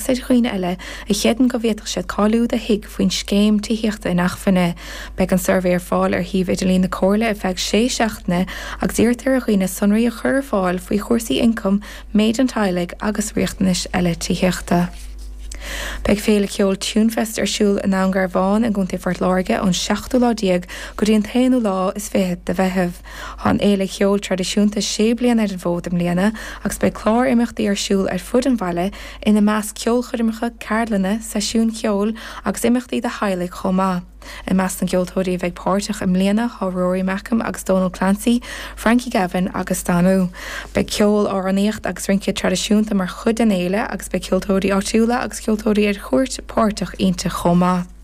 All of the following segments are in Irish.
Céard faoi dhaoine eile a chreideann go bhféadfadh siad cáiliú do thigh faoin scéim tithíochta inacmhainne? Beidh an suirbhé ar fáil ar shuíomh idirlín na Comhairle ar feadh sé seachtaine agus iarrtar ar dhaoine sonraí a chur ar fáil faoi chúrsaí ioncaim, méid an teaghlaigh agus riachtanais eile tithíochta. Beidh féile ceoil TuneFest ar siúl i nDún Garbhán i gContae Phort Láirge ón seachtú lá déag go dtí an t-aonú lá is fiche de Mheitheamh. Tá an fhéile cheoil traidisiúnta sé bliana ar an bhfód i mbliana agus beidh clár imeachtaí ar siúl ar fud an bhaile, ina measc ceolchoirmeacha, ceardlanna, seisiúin cheoil agus imeachtaí do theaghlaigh chomh maith. I measc na gceoltóirí a bheidh páirteach i mbliana tá Rory Makem agus Dónal Clancy, Frankie Gavin agus Danú. Beidh ceol, amhránaíocht agus rince traidisiúnta mar chuid den fhéile agus beidh ceoltóirí áitiúla agus ceoltóirí ar chuairt páirteach inti chomh maith.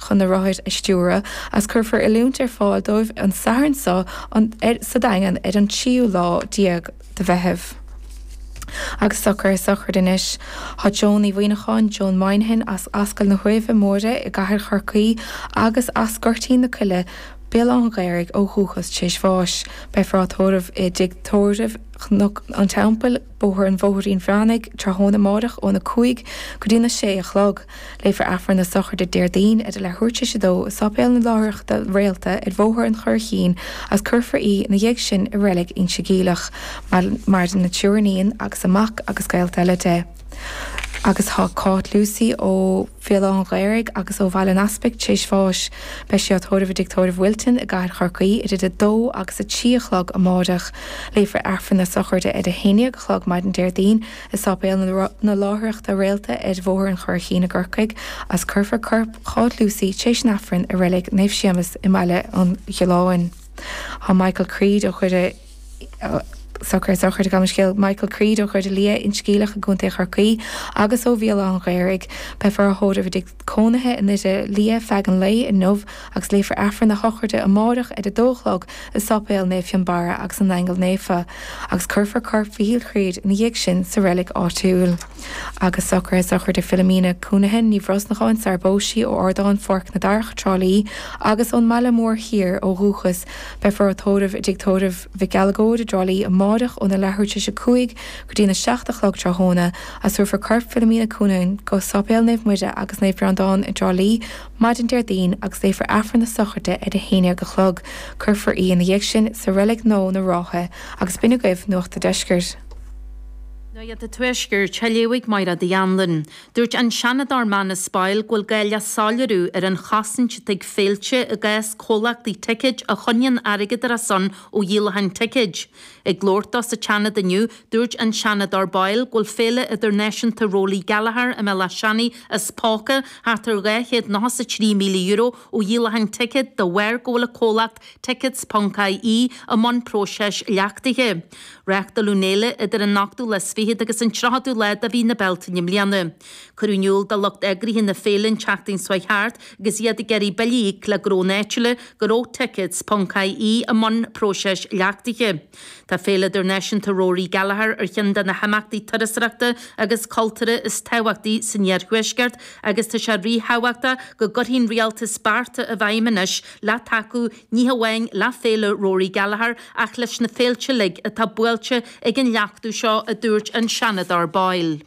chun na rothair a stiúradh agus cuirfear oiliúint ar fáil dóibh an Satharn seo sa Daingean ar an tríú lá déag de Mheitheamh. Agus socraithe sochraid anois. Tá Joan Uí Mhuíneacháin, Joan Moynihan, as Ascaill na hUaimhe Móire i gcathair Chorcaí agus as Goirtín na Coille, Béal Átha'n Ghaorthaidh ó dhúchas tréis bháis. Beifear á tórramh i dTigh Tórraimh Chnoc an Teampaill, Bóthar an Bhóithrín Mhanaigh, tráthnóna amáireach ón 5 go dtí'n 6 a chlog. Léifear Aifreann na Sochraide Déardaoin ar a leathuair tréis a dó i Sáipéal na Láithreachta Réalta ar Bhóthar an Churraichín agus cuirfear í ina dhiaidh sin i Reilig Inse Geimhleach. Maireann a triúr iníon agus a mac agus gaolta eile di agus tá Cáit Lucey ó Bhéal Átha'n Ghaorthaidh agus ó Bhaile an Easpaig tréis bháis. Beidh sí á tórramh i dTigh Tórraimh Wilton i gCathair Chorcaí idir 2 agus 3 a chlog amáireach. Léifear Aifreann na Sochraide ar a haon déag a chlog maidin Déardaoin i Sáipéal na Láithreachta Réalta ar Bhóthar an Churraichín i gCorcaigh agus cuirfear corp Cháit Lucey tréis an Aifrinn i Reilig Naomh Séamas i mBaile an Ghalláin. Tá Michael Creed ó Dhoire Socraithe sochraide, gabh mo leithscéal, Michael Creed ó Dhoire Liath, Inse Geimhleach i gContae Chorcaí agus ó Bhéal Átha'n Ghaorthaidh. Beifear á thórramh i dtigh cónaithe i nDoire Liath feadh an lae inniu agus léifear Aifreann na Sochraide amáireach ar a dó a chlog i Sáipéal Naomh Fionnbarra agus na nAingeal Naofa agus cuirfear corp Mhichíl Chreed ina dhiaidh sin sa reilig áitiúil. Agus socraithe sochraide Philomena Counihan Ní Bhrosnacháin sarar phós sí ó Ardán Pháirc na Darach, Trá Lí, agus ón mBaile Mór Thiar ó dhúchas Beifear á tórramh i dTigh Tórraimh Mhic Uileagóid i dTrá Lí amáireach óna leathuair tar éis a cúig go dtí'n a seacht a chlog tráthnóna agus tabharfar corp Philomena Counihan go Sáipéal Naomh Muire agus Naomh Breandán i dTrá Lí maidin Déardaoin agus léifear Aifreann na Sochraide ar a haon déag a chlog. Cuirfear í ina dhiaidh sin sa Reilig Nua na Rátha. Agus b'in agaibh Nuacht a' Deiscirt. Nuacht a' Tuaiscirt, Shaileoidh Máire Uí Anluain, Dúirt an Seanadóir Manus Boyle go bhfuil gá le soiléiriú ar an chosaint a thig féilte i gcás comhlachtaí ticéad a choinníonn airgead ar a son ó dhíolacháin ticéad. Ag labhairt dó sa tSeanad inniu, dúirt an Seanadóir Boyle go bhfuil Féile Idirnáisiúnta Rory Gallagher i mBéal Átha Seanaidh as póca thart ar €293,000 ó dhíolacháin ticéad de bharr go bhfuil an comhlacht Tickets.ie i mbun próiseas leachtaithe. Reáchtáladh an fhéile idir an 28ú agus an 30ú lá de mhí na Bealtaine i mbliana. Cuireadh in iúl do lucht eagraithe na féile an tseachtain seo thart agus iad ag iarraidh billí a íoc le gnónna áitiúla go raibh tickets ponc ie i mbun próiseas leachtaithe. Tá Féile Idirnáisiúnta Rory Gallagher ar cheann de na himeachtaí turasóireachta agus cultúrtha is tábhachtaí san iarthuaisceart agus tá sé ríthábhachtach go gcuirfidh an rialtas bearta i bhfeidhm anois le tacú ní hamháin le Féile Rory Gallagher ach leis na féilte uilig atá buailte ag an leachtú seo, a dúirt an Seanadóir Boyle.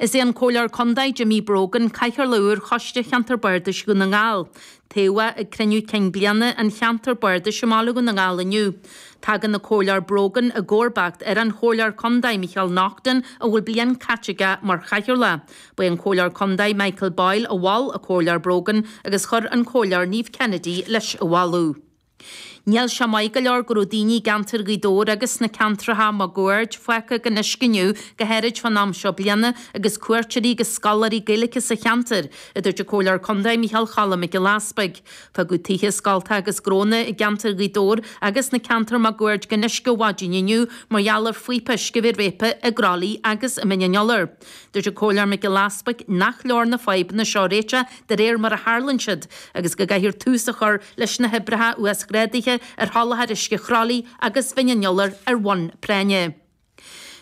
Is é an Comhairleoir Contae Jimmy Brogan cathaoirleach úr Choiste Cheantar Bardais Dhún na nGall. Toghadh é ag cruinniú cinn bliana an cheantair bardais i mBaile Dhún na nGall inniu. Tagann an Comhairleoir Brogan i gcomharbacht ar an Chomhairleoir Contae Micheal Naughton a bhfuil bliain caite aige mar chathaoirleach. Ba é an Comhairleoir Contae Michael Boyle a mhol an Comhairleoir Brogan agus chuir an Comhairleoir Niamh Kennedy leis an mholadh. Níl sé maith go leor go raibh daoine i gceantar Ghaoth Dobhair agus sna ceantracha máguaird fágtha gan uisce inniu go háirid fán am seo bliana agus cuairteoirí agus scoláirí Gaeilge sa cheantar, a dúirt an Comhairleoir Contae Micheál Choilm Mac Giolla Easbuig. Fágadh tithe, scoilte agus gnónna i gceantar Ghaoth Dobhair agus sa cheantar máguaird gan uisce ó mhaidin inniu mar gheall ar phoípe uisce a bheith réabtha i gCroithlí agus i Mín an Iolair. Dúirt an Comhairleoir Mac Giolla Easbuig nach leor na fadhbanna seo a réiteach de réir mar a tharlaíonn siad agus go gcaithfear tús a chur leis na hoibreacha uasghrádaithe ar sholáthar uisce Chroithlí agus Mhín an Iolair ar bhonn práinne.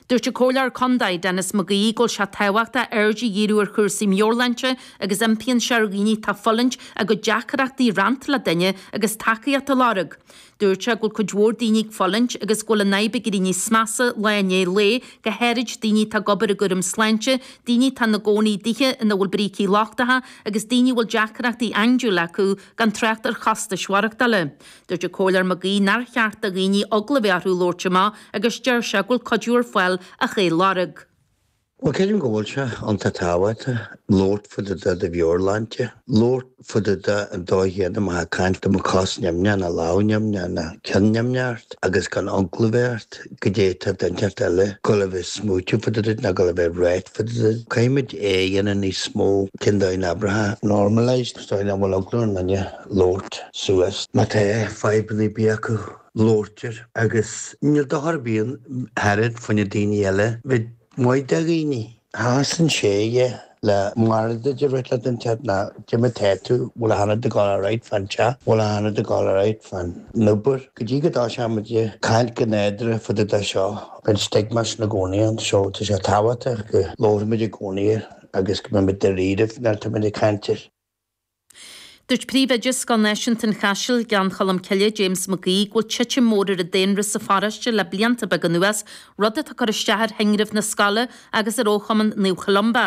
Dúirt an Comhairleoir Contae Denis McGee go bhfuil sé tábhachtach aird a dhíriú ar chúrsaí meabhairshláinte agus impíonn sé ar dhaoine atá ag fulaingt a gcuid deacrachtaí a roinnt le duine agus tacaíocht a lorg. Dúirt sé go bhfuil cuid mhór daoine ag fulaingt agus go bhfuil an fhadhb ag éirí níos measa lá i ndiaidh lae, go háirid daoine atá ag obair i gcúram sláinte, daoine atá ina gcónaí i dtithe ina bhfuil brící lochtach agus daoine a bhfuil deacrachtaí andúile acu, gan trácht ar chostais mhaireachtála. Dúirt an Comhairleoir McGee nár cheart do dhaoine eagla a bheith orthu labhairt amach agus deir sé go bhfuil cuidiú ar fáil ach é a lorg. Bhuel, creidim go bhfuil sé iontach tábhachtach labhairt fá dtaobh de do mheabhairshláinte, labhairt fá dtaobh de an dóigh chéanna má tá tú ag caint dá mbeadh cos nimhneach nó lámh nimhneach nó ceann nimhneach ort agus gan eagla a bheith ort, goidé atá daoine eile, ag dul a bheith ag smaointiú fá dtaobh duit nó ag dul a bheith ag ráit fá dtaobh duit. Caithfimid é a dhéanamh níos mó cineál déarfá, normalised, sa dóigh nach bhfuil eagla ar aon duine labhairt suas má tá fadhbanna ar bith acu. Labhairtear, agus níl dochar ar bith ann, tarraingt faoina daoine eile bheith maith do dhaoine. Seasann sé, ie, le Máiréad de rith leat an teach ná caidé mar tá tú, bhfuil achan rud ag dul alright fán teach, bhfuil achan rud ag dul alright fán obair, go dtí go dtoiseoimid ag caint go nádúrtha fá dtaobh de seo, beidh an stigma sin i gcónaí ann so tá sé tábhachtach go labhraímid i gcónaí air agus go mbeimid dáiríribh nuair atáimid ag caint air. Dúirt Príomhoide Scoil Náisiúnta an Chaisil, Gleann Cholm Cille, James Mac Aoidh, go bhfuil titim mhór ar an daonra sa pharóiste le blianta beaga anuas, rud atá ag cur isteach ar thinreamh na scoile agus ar fhochumann Naomh Columba.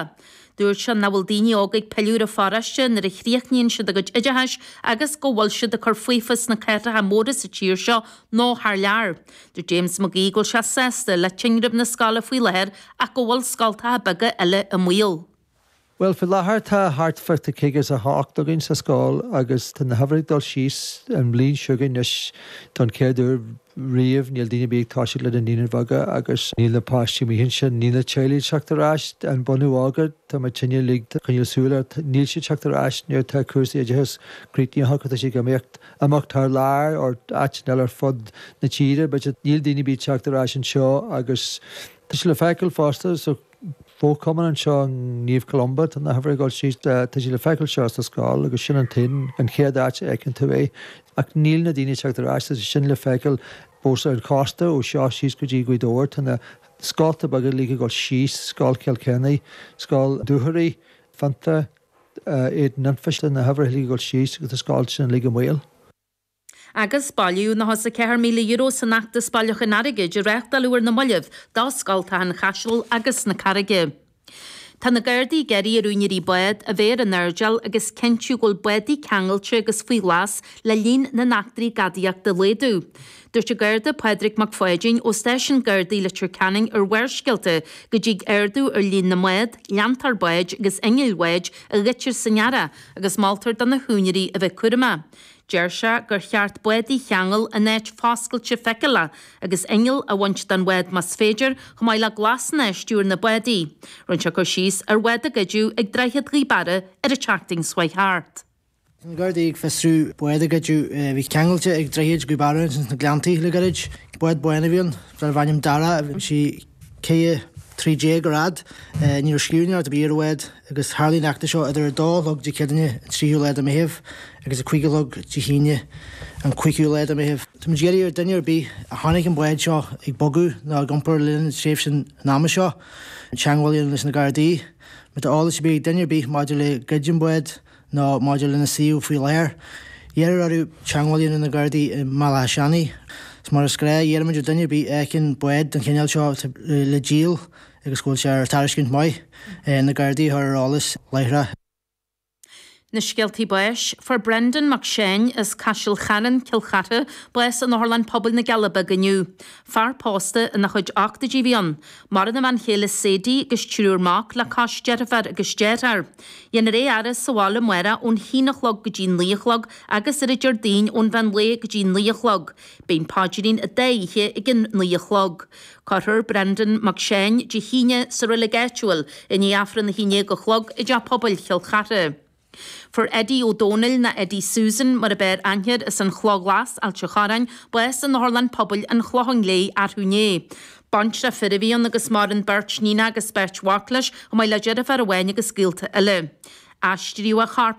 Dúirt sé nach bhfuil daoine óga ag pilleadh ar an pharóiste nuair a chríochnaíonn siad a gcuid oideachais agus go bhfuil siad ag cur faofa sna cathracha móra sa tír seo nó thar lear. Dúirt James Mac Aoidh go bhfuil sé sásta le tinreamh na scoile faoi láthair ach go bhfuil scoltacha beaga eile i mbaol. Bhuel, faoi láthair tá thart fá caoga is a hocht againn sa scoil agus tá na huimhreacha ag dul síos. An bhliain seo chugainn anois, don chéad uair riamh, níl duine ar bith ag toiseacht le na naíonáin bheaga agus níl na páistí amuigh ansin, níl na teaghlaigh ag teacht ar ais, an bunadh óga, tá muidinne ag coinneáil súil air, níl siad ag teacht ar ais nuair atá cúrsaí oideachais críochnaithe acu, tá siad ag imeacht amach thar lear or áiteanna eile ar fud na tíre but níl daoine ar bith ag teacht ar ais anseo agus tá sé le feiceáil fosta sa fochumann anseo ag Naomh Columba, tá na huimhreacha ag dul síos, tá sé le feiceáil anseo sa scoil agus sin an t-aon, an chéad áit a fheiceann tú é. Ach níl na daoine ag teacht ar ais, tá sé sin le feiceáil fosta ar an chósta, ó seo síos go dtí Gaoth Dobhair. Tá na scoltacha beaga uilig ag dul síos, Scoil Chill Choinnigh, Scoil Dúchoraidh, Fintown, Éadan Anfa, tá na huimhreacha uilig ag dul síos agus tá scoltacha sin uilig i mbaol. Agus bailíodh €94,000 san fheachtas bailiúcháin airgid a reáchtáladh ar na mallaibh do scoltacha an Chaisil agus na Carraige. Tá na Gardaí ag iarraidh ar úinéirí bád a bheith ar an airdeall agus cinntiú go bhfuil bádaí ceangailte agus faoi ghlas le líon na n-eachtraí gadaíochta a laghdú. Dúirt an Garda Pádraig Mac Pháidín ó Stáisiún Gardaí Leitir Ceanainn ar Bharrscéalta go dtig ardú ar líon na mbád, leantóir báid agus innill bháid a ghoidtear san earrach agus moltar do na húinéirí a bheith cúramach. Deir sé gur cheart bádaí a cheangal in áit foscailte feiceálach, agus inneall a bhaint den bhád más féidir, chomh maith le glasanna ar stiúir na bádaí. Rinne sé cur síos ar bhád a goideadh ag Droichead Ghaoth Beara ar an tseachtain seo thart. Bhí na Gardaí ag fiosrú bád a goideadh a bhí ceangailte ag Droichead Ghaoth Beara ins na Gleanntaí le gairid. Bád bán a bhí ann, darbh ainm Darragh. Bhí sí. 16 troithe ar fhad, ní raibh scríbhneoireacht ar bith ar an bhád agus tharlaigh an eachtra seo idir 2 a chlog Dé Céadaoine an 3ú lá de Meitheamh agus 5 a chlog Dé hAoine an 5ú lá de Meitheamh. Tá muid ag iarraidh ar duine ar bith a chonaic an bád seo ag bogadh nó ag iompar le linn tréimhse an ama seo teagmháil a dhéanamh leis na Gardaí. Má tá eolas ar bith ag duine ar bith maidir le goid an bháid nó maidir lena suíomh faoi láthair. Iarradh orthu teagmháil a dhéanamh leis na Gardaí i mBaile Átha Seanaidh. Is mar is gnách iarraimid ar dhuine ar bith a fheiceann bád den chineál seo atá le díol agus go bhfuil sé ar tairiscint maith, na Gardaí a chur ar eolas láithreach. Na scéaltaí báis. Fuair Brendan Mac Seáin as Caiseal Chairn, Cill Chartha, bás in Otharlann Pobail na gCealla Beaga inniu. Fear pósta ina chuid ochtóidí a bhí ann. Maireann a bhean chéile Sadie agus triúr mac leis, deirfiúr agus deartháir. Déanfar é a fhaire sa bhaile amárach ón haon a chlog go dtí naoi a chlog agus ar an Déardaoin ón mheán lae go dtí naoi a chlog. Beidh an Paidrín an dá oíche ag a naoi a chlog. Cuirfear Brendan Mac Seáin Dé hAoine sa reilig áitiúil i ndiaidh Aifreann a haon déag a chlog i dTeach Pobail Chill Chartha. Fuair Eddie Ó Dónaill, nó Eddie Susan mar ab fhearr aithne air, as an Chloch Ghlas, Ailt an Chorráin, bás in Otharlann Pobail an Chlocháin Léith arú inné. Baintreach fir a bhí ann agus maireann beirt níon agus beirt mhac leis, chomh maith le deirfiúr amháin agus gaolta eile. Aistríodh a chorp